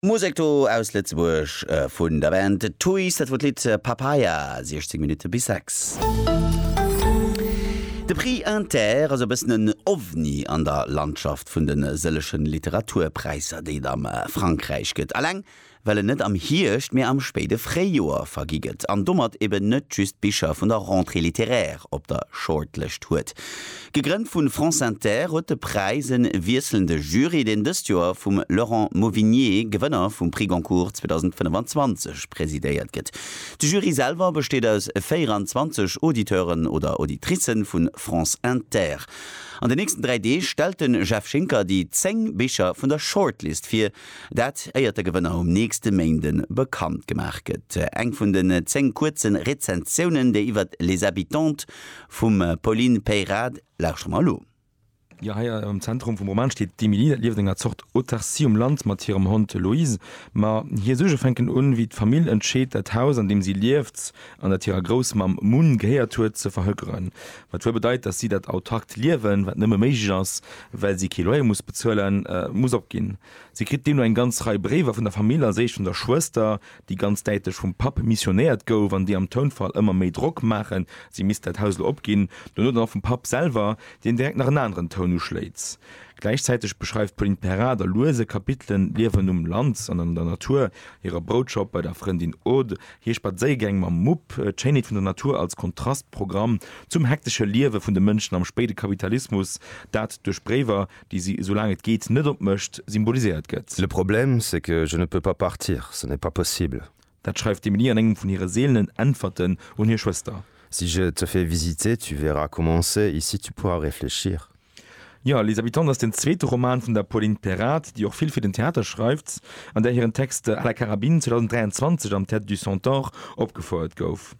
Musek do aus Lëtzebuerg vun der Band Tuys, dat wor d'Lidd Papaya, 16 Minutte bis 6. De Prix Inter ass e bëssen en Ovni an der Landschaft vun de sëllegen Literaturpräisser, déi et am Frankräich gëtt. Alleng well en net am Hierscht, mee am spéide Fréijoer vergi gëtt an domat eben net just d'Bicher vun der Rentrée littéraire op der Shortlëscht huet. Gegrënnt vu France Inter huet de Präis e wiesselnde Jury, deen dëst Joer vum Laurent Mauvignier, Gewënner vum Prix Goncourt 2025, presidéiert gëtt. De Jury selwer besteet aus 24 Auditeuren oder Auditricen vu France Inter. An den nächsten dräi Deeg stellt de Jeff Schinker déi 10 Bicher vun der Shortlist vir, Dat éiert de Gewënner um nächste Méinde bekannt gemaach gëtt. Eng vun den 10 kuerze Rezensiounen, déi iwwert Les Habitantes vum Pauline Peyrade, lauschtert mer elo. Jo, hei am Zentrum vum Roman steet d'Emily. Dat lieft enger Zort Autarcie um Land mat hirem Hond Loïs. Ma hir Suerge fänken un, wéi d'Famill entscheet, dat Haus, an deem si lieft, an dat hirer Groussmamm Mun gehéiert huet, ze verhökeren, wat wuel bedeit, datt si dat autarkt Liewen, wat nëmme méiglech ass, well si kee Loyer muss bezuelen, muss opginn. Si kritt deemno eng ganz Rei Bréiwer vun der Famill, als éischt vun der Schwëster, déi ganz däitlech vum Papp missionéiert gouf an déi am Tounfall ëmmer méi Drock maachen, si misst dat Haus elo opginn, dono dann och vum Papp selwer, deen direkt nach en aneren Toun uschléit. Gläichzäiteg beschreift d'Pauline Perrin da lues e Kapitel Liewen um Land an an der Natur, hirer Broutschopp, bei der Frëndin Aude, Hir Spadséiergäng mam Mupp, d'Schéinheet vun der Natur als Kontrastprogramm zum hektesche Liewe vun de Mënschen am spéide Kapitalismus, dat duerch Bréiwer, déi si, soulaang et geet, net opmécht, symboliséiert gëtt. Le problème, c'est que je ne peux pas partir, ce n'est pas possible. Dat schreift d'Emilie an engem vun hire seelenen Äntwerten un hir Schwëster. Si je te fais visiter, tu verras comment c'est, ici tu pourras réfléchir. Jo, Les Habitants ass den zweete Roman vun der Pauline Perrard, déi och vill fir den Theater schreift an där hiren Text à la carabine 2023 am Théâtre du Centaure opgefouert gouf.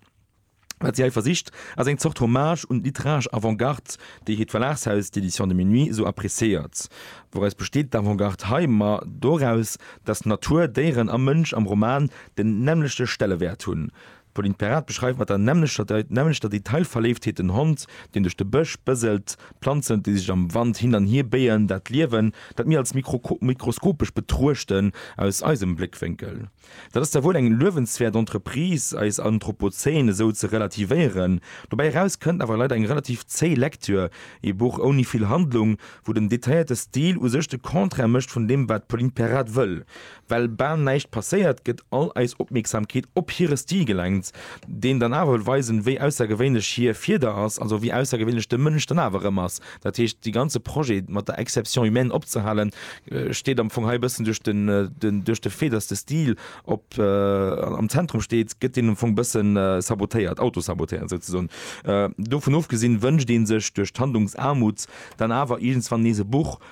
Wat si hei versicht, ass eng Zort Hommage un d'literaresch Avant-Garde, déi hiert Verlagshaus, d'Éditions de Minuit, esou appreciéiert. Wouraus besteet d'Avant-Garde hei? Ma doraus, datt Natur, Déieren a Mënsch am Roman den nämmlechte Stellewäert hunn. D'Pauline Perrard beschreift mat der nämmlechter Detailverléiftheet den Hond, deen duerch de Bësch bëselt, d'Planzen, déi sech am Wand hin an hier béien, dat Liewen, dat mir als mikroskopesch betruechten, aus eisem Bléckwénkel. Dat ass da wuel eng luewenswäert Entreprise, eis Anthropozän esou ze relativéieren. Dobäi eraus kënnt awer leider eng relativ zéi Lektür, ee Buch ouni vill Handlung, wou den detailléierte Stil u sech de Contraire mécht vun deem, wat d'Pauline Perrard wëll. Well bal näischt passéiert, gëtt all eis Opmierksamkeet op hire Stil gelenkt, deen dann awer wëll weisen, wéi aussergewéinlech hir Fieder ass, also wéi aussergewéinlech de Mënsch dann awer erëm ass. Dat heescht, de ganze Projet mat der Exception humaine opzehalen, steet am Fong hei e bëssen duerch den, duerch de Fait, datt de Stil op, am Zentrum steet, gëtt deen am Fong e bësse sabotéiert, autosabotéiert souzesoen. Dovun ofgesinn, wënscht ee sech duerch d'Handlungsaarmut dann awer iergendswann nees e Buch,